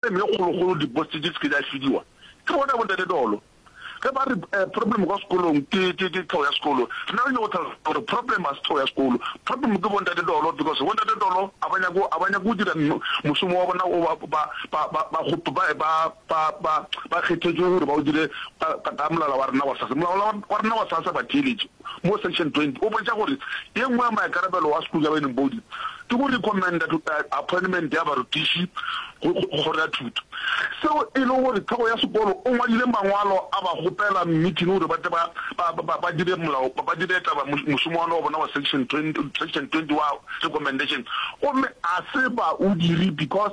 Mme kgolokgolo di post di se ke di a fidiwa ke bona bo ntate Dolo. Ge ba re problem kwa sekolong ke ke ke tlhoo ya sekolo, rena re nyoko tlhalosa gore problem ga se tlhoo ya sekolo, problem ke bo ntate Dolo because bo ntate Dolo a ba nyake a ba nyake go dira mošomo wa bona o ba ba ba ba ba go ba ba ba ba ba kgethetšwe gore ba o dire ka ka molala wa rena wa sasa. Molala wa rena wa sasa ba theeletše. mo section 20 o boletša gore ye nngwe ya maikarabelo a School Governing Body ke go recommenda appointment ya barutiši go Kgoro ya Thuto, seo e lego gore tlhogo ya sekolo o ngwadile mangwalo a ba kgopela meeting gore ba tle ba dire molao, ba dire taba mošomo wa bona wa section 20 wa recommendation gomme a se ba o dire because.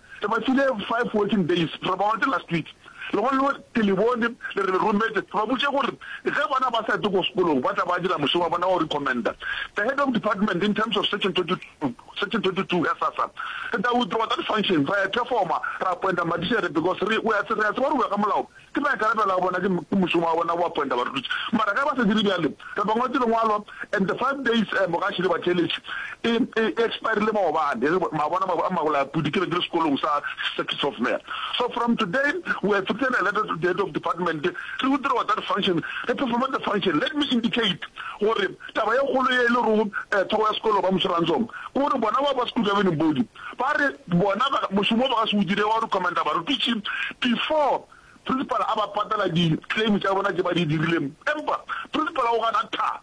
Re ba file five working days, re ba ote last week, legono ke le bone le re le rommetše, re ba botše gore ge bona ba sa ete ko sekolong ba tla ba dira mošomo wa bona wa go recommenda the head of department in terms of section twenty two, section twenty two ya SASSA. Re tla withdrawa that function, ra e performa, ra appointa Madišere because re, we a, re a tseba gore o ya ka molao. Ke maikarabelo a bona, ke mošomo wa bona go apointa barutiši. Mara ge ba sa dire bjalo, re ba ngwaletse lengwalo and the five days um ga šele ba theeletše e, e, e expirile maobane, ge ba bona ma, a mabolapudi ke be ke le sekolong sa Circuit Software. So from today we have written a letter to the head of department, re go dira wa that function, re performa the function. Let me indicate gore taba ye kgolo ye e le rego um thoko ya sekolo ba Moshorantsong ke gore bona ba ba school governing body, Ba re bona ba, mošomo wo ba ka se o dire wa go recommenda barutiši before principal a ba patela di claim tša bona tše ba di dirile. Empa principal o gana tha,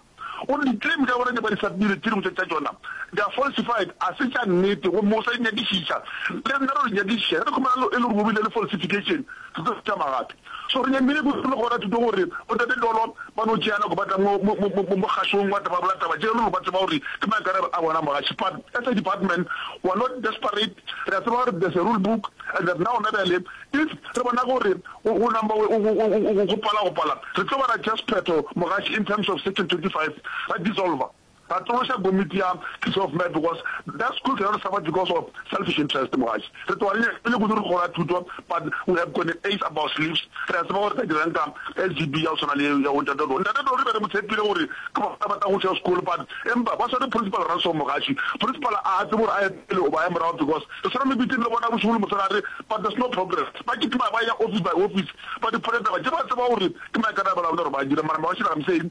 o re di claim tša bona tše ba di submiretilego tša tšona they are falsified, ga se tša nnete gomme o sa di nyakišiša. Le nna re yo di nyakišiša ge re khumana e le gore bo bile le falsification. Thuto tša Magato. Sorenya Mmine Kutu le Kgora Thuto gore Botate Tolo ba no tšea nako ba tla mo mogašong wa taba bola taba tše lelo ba tseba gore ke maikarabelo a bona mogaši part as a department we are not desperate re a tseba gore there's a rule book and that na gona bjale if re bona gore go number go pala go pala re tlo ba ra tšea sephetho mogaši in terms of section 25 ra dissolver Ba tloša komiti ya Kids of Mad because that school cannot survive because of selfish interest mogadi. Re tloga re nyaka pele kudu re gola thuto but we have gone ace up our sleeves. Re a tseba gore re tla dirang ka SGB ya go tshwana le ya bo Ntate Toro. Ntate Toro re be re mo tshepile gore ke bona ba tla goša school but empa ba swere Principal Ransom mogadi. Principal a a tsebe gore a ye pele goba a ye morago because re swere mebiting le bona bošego le mosegare but there's no progress. Ba kitima ba eya office by office ba dipholetsa ba je ba tseba gore ke maikarabelo a bona gore ba dire mara mabašele I'm saying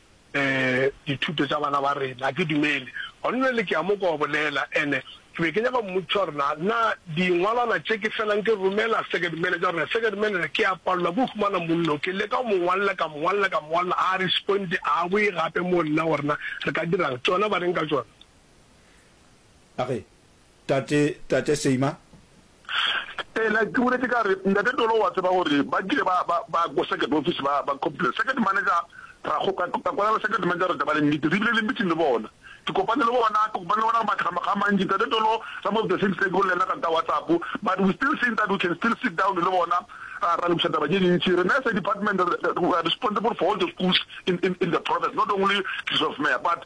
dithuto tša bana ba rena. Ga ke dumele. Gona bjale ke ya mo kwa go bolela, ene ke be ke nyaka go mmotšiša gore na, na dingwalwana tše ke felang ke romela Second Manager, gore na Second Manager ke ya palelwa ke go humana mollo. Ke leka go mo ngwalla, ka mo ngwalla, ka mo ngwalla, ga a responde, ga a boe gape moo nna, gore na re ka dira'ng. Tšona ba reng ka tšona? A re, Tate, Tate Seymour, Eena, ke boletše ka re, Ntate Tolo o a tseba gore ba kile ba, ba, ba ko circuit office ba, ba complaina. Circuit manager, ra go, ka, ka kwala le circuit manager gore taba le nnete. Re bile le meeting le bona. Ke kopane le bona, ke kopane le bona makga, makga a mantši. Ntate Tolo, some of the things tse ke bolela le yena ka, ka WhatsApp, but we still think that we can still sit down le bona ra, ra lokiša taba tše dintši. Rena as a department re, re, we are responsible for all the schools in, in, in the province, not only Clearfield Mayor, but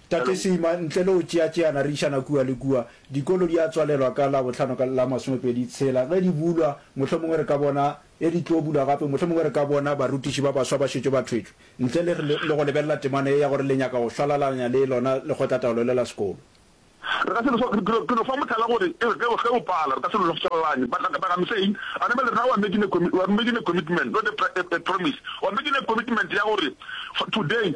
Tate Seema, ntle le go tšeatšeana re išana kua le kua. Dikolo di a tswalelwa ka Labohlano ka la masomepedi tshela. Ge di bulwa, mohlomongwe re ka bona, ge di tlo bulwa gape, mohlomongwe re ka bona barutiši ba baswa ba šetše ba thwetšwe, ntle le le go lebelela temana ye ya gore le nyaka go hlalalaña le lona lekgotlataolo le la sekolo. Re ka se no, ke no fa mohlala gore e re ge o pala, re ka se no hlalalaña. But like I'm saying, a na ba le rena we are making a, we are making a commitment, not a, a promise, we are making a commitment ya gore for today,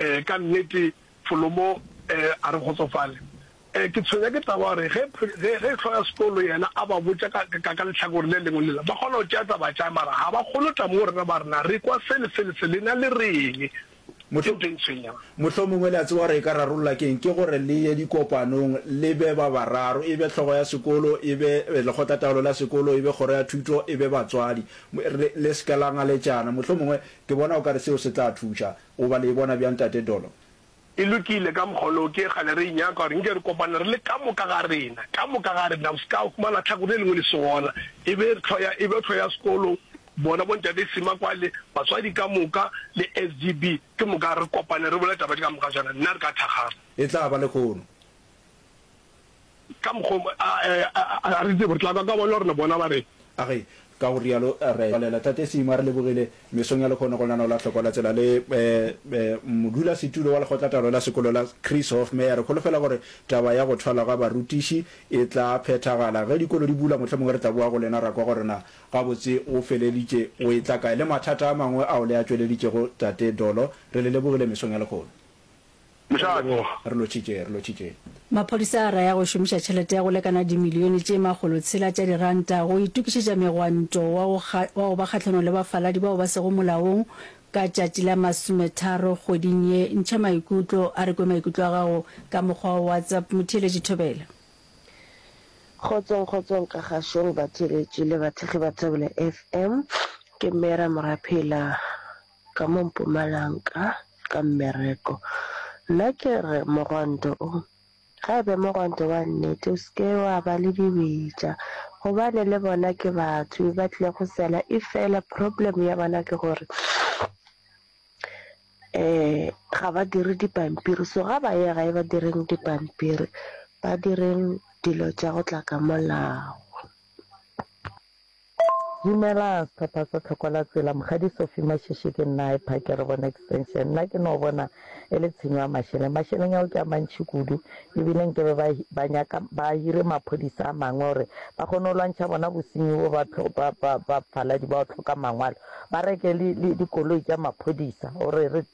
Ee, ka nnete, Folomo a re kgotsofale. Ee, ke tshwenya ke taba ya gore ge, ge, ge hlogo ya sekolo yena a ba botša ka, ka, ka lehlakore le lengwe lela, ba kgona go tšea taba tša, mara ga ba kgone go tla moo rena ba re, Na re kwa se le se le se, lena le reng? Ke ntho e ntshwenyang. Mohlomongwe le a tseba gore e ka rarolla ke eng. Ke gore le ye dikopanong, le be ba bararo, e be hlogo ya sekolo, e be lekgotlataolo la sekolo, e be kgoro ya thuto, e be batswadi, le, le se ke la ngaletšana. Mohlomongwe, ke bona o ka re seo se tla thuša. O ba le e bona bjang Tate Dolo? E lokile, ka mokgwa oloo ke kgale re e nyaka gore nke re kopane re le ka moka ga rena, ka moka ga rena, o se ka huma latlhakore le lengwe le se gona, e be tlhlo ya, e be tlhlo ya sekolo, bona Bontate Sima kwale, batswadi ka moka, le SGB, ke moka re kopane re bole taba tše ka moka tšona, nna re ka thakgala. E tla ba lehono. Ka mokgo a re tsebo, re tla kwa ka bona gore bona ba reng. A re, Ka go rialo re tswalela Tate Simo a re lebogile mesong ya lekhono go lenaneo la Tlhoko la Tsela le modulasetulo wa lekgotlatalo la sekolo la Chris Hofmeyr. Re holofela gore taba ya go thwalwa ga barutiši e tla phethagala. Ge dikolo di bula, mohlomongwe re tla boa go lena ra kwa gore na gabotse go feleditše go e tla kae le mathata a mangwe ao le a tšweleditšego Tate Dolo. Re le lebogile mesong ya lekhono. Mošate. Leboga. Re lotšhitše, re lotšhitše. Maphodisa a raya go šomiša tšhelete ya go lekana dimilione tše makgolo tshela tša diranta go itokišetša megwanto wa go kga, wa go ba kgahlanong le bafaladi bao ba sego molaong ka tšatši la masometharo kgweding ye. Ntšha maikutlo, a re kwe maikutlo a gago ka mokgwa wa WhatsApp, Motheeletši Thobela. Kgotsong kgotsong ka gašong batheeletši le bathekgi ba Thobela FM, ke Mera Moraphela. ka mo Mpumalanka ka mmereko. Nna ke re mogwanto o, ga e be mogwanto wa nnete, o se ke wa ba le dibetša gobane le bona ke batho ba tlile go sela. E fela problem ya bona ke gore um ga ba dire dipampiri, so ga ba ye gae ba direng dipampiri, ba direng dilo tša go tla ka molao. Dumela sehlopha sa Tlhoko la Tsela, Mokgadi Sophie Mashishi ke nna, I park re bona extension. Nna ke no bona e le tshenyo ya mašeleng, mašeleng ao ke a mantšhi kudu, e bile nkebe ba ba nyaka ba hire maphodisa a mangwe gore ba kgone go lwantšha bona bosenyi bo, ba ba ba faladi bao tlhoka mangwalo ba reke le le dikoloi tša maphodisa gore re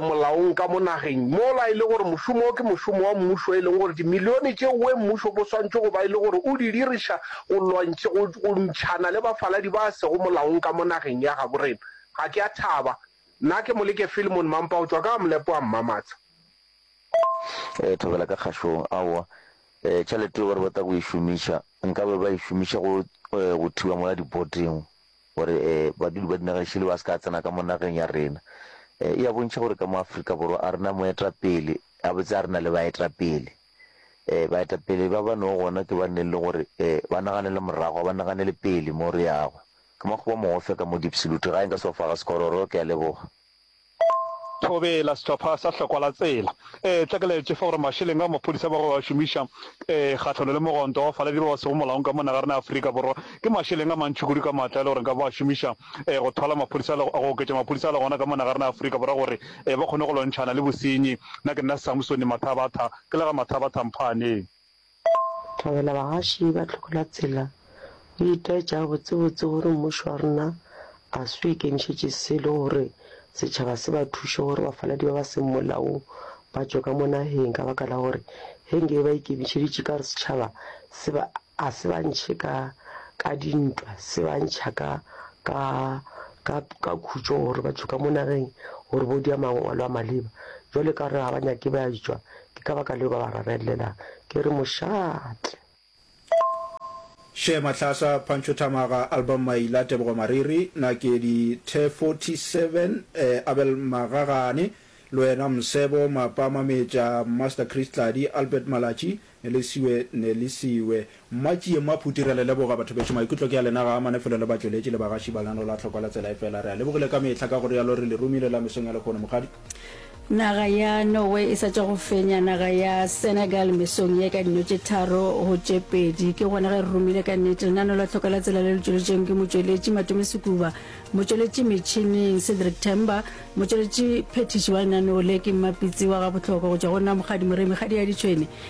molaong ka mo nageng mola e le gore mošomo wo ke mošomo wa mmušo e leng gore dimilione tše uwe mmušo bo swantšwe go ba e le gore o di diriša go lwantšha go go ntšhana le bafaladi ba sego molaong ka mo nageng ya gabo rena. Ga ke a thaba. Nna ke Moleke Philemon Mampa go tšwa ka Gamlepo wa Mmamatsha. E thobela ka kgašong aowa e tšhalete yeo ba re ba tla go e šomiša nkabe ba e šomiša go go thiba mola diboding. gore badudi ba dinageng šele ba se ka tsena ka mo nageng ya rena. E a bontšha gore ka mo Afrika Borwa a rena moetapele, gabotse a rena le baetapele. Baetapele ba ba no gona ke ba neng le gore ba naganele morago, ba naganele pele mo re yago. Ke makgoba mogofya ka mo Diepsloot, gae nka se wa fa ga Sekgororo, ke a leboga. Thobela, Sehlopha sa Hlokwa la Tsela. Ee, tla ke la etšefa gore mašeleng ao maphodisa ba go a šomiša ee, kgahlano le mogwanto wa bafaladi ba ba sego molaong ka mona ga rena Afrika Borwa, ke mašeleng a mantši kudu ka maatla e le gore nka ba a šomiša ee, go thwala maphodisa le go oketša maphodisa a le gona ka mona ga rena Afrika Borwa gore ee, ba kgone go lwantšhana le bosenyi. Nna ke nna Samsoni Mathabatha, ke la ga Mathabatha Mphaaneng. Thabela bagaši ba tlhokola tsela o itaetša gabotsebotse gore mmušo wa rena ga se o ikemišetše selo gore setšhaba se ba thuše gore bafaladi ba ba seng molaong ba tšwe ka mo nageng ka baka la gore ge nke be ba ikemišeditše ka gore setšhaba se ba ga se ba ntšhe ka ka dintwa se ba ntšha ka ka ka ka khutšo gore ba tšwe ka mo nageng gore bo dia mangwalo a maleba jwale ka gore ga ba nyake ba tšwa Ke ka baka leo ba ba rarelela ke re mošate. Share Matlhasa, Pancho Thamaga, Album Maila, Tebogo Mariri, Nakedi, The 47, eh, Abel Magagane, Loena Msebo, Mapa Mametša, Master Chris Tladi, Albert Malatši, Nelisiwe Nelisiwe, Mma Tšie, Mma Phuti, re le leboga bathobetši. Maikutlo ke a lena ga a amane felo le batšweletši le bagaši ba lena, lo a hlokwa le tsela e fela. Re a lebogile ka mehla, ka go rialo re le romile la mesong ya lehono, Mokgadi. Naga ya Norway e sa tšwa go fenya naga ya Senegal mesong ye ka dino tše tharo go tše pedi. Ke gona ge re romile ka nnete lenano la tlhokwa la tsela le le tšweletšweng ke motšweletši Matome Sekuba, motšweletši metšhining Cedric Temba, motšweletši phethiši wa lenaneo le ke mmapitsi wa gabohlokwa go tšwa go nna Mokgadi Moremi Kgadiaditšhwene,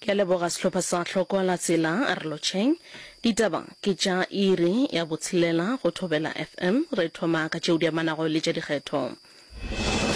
Ke a leboga sehlopha sa Hloko la Tsela, re lotšheng. Ditaba ke tša iri ya botshelela go Thobela FM. Re thoma ka tšeo di amanago le tša dikgetho.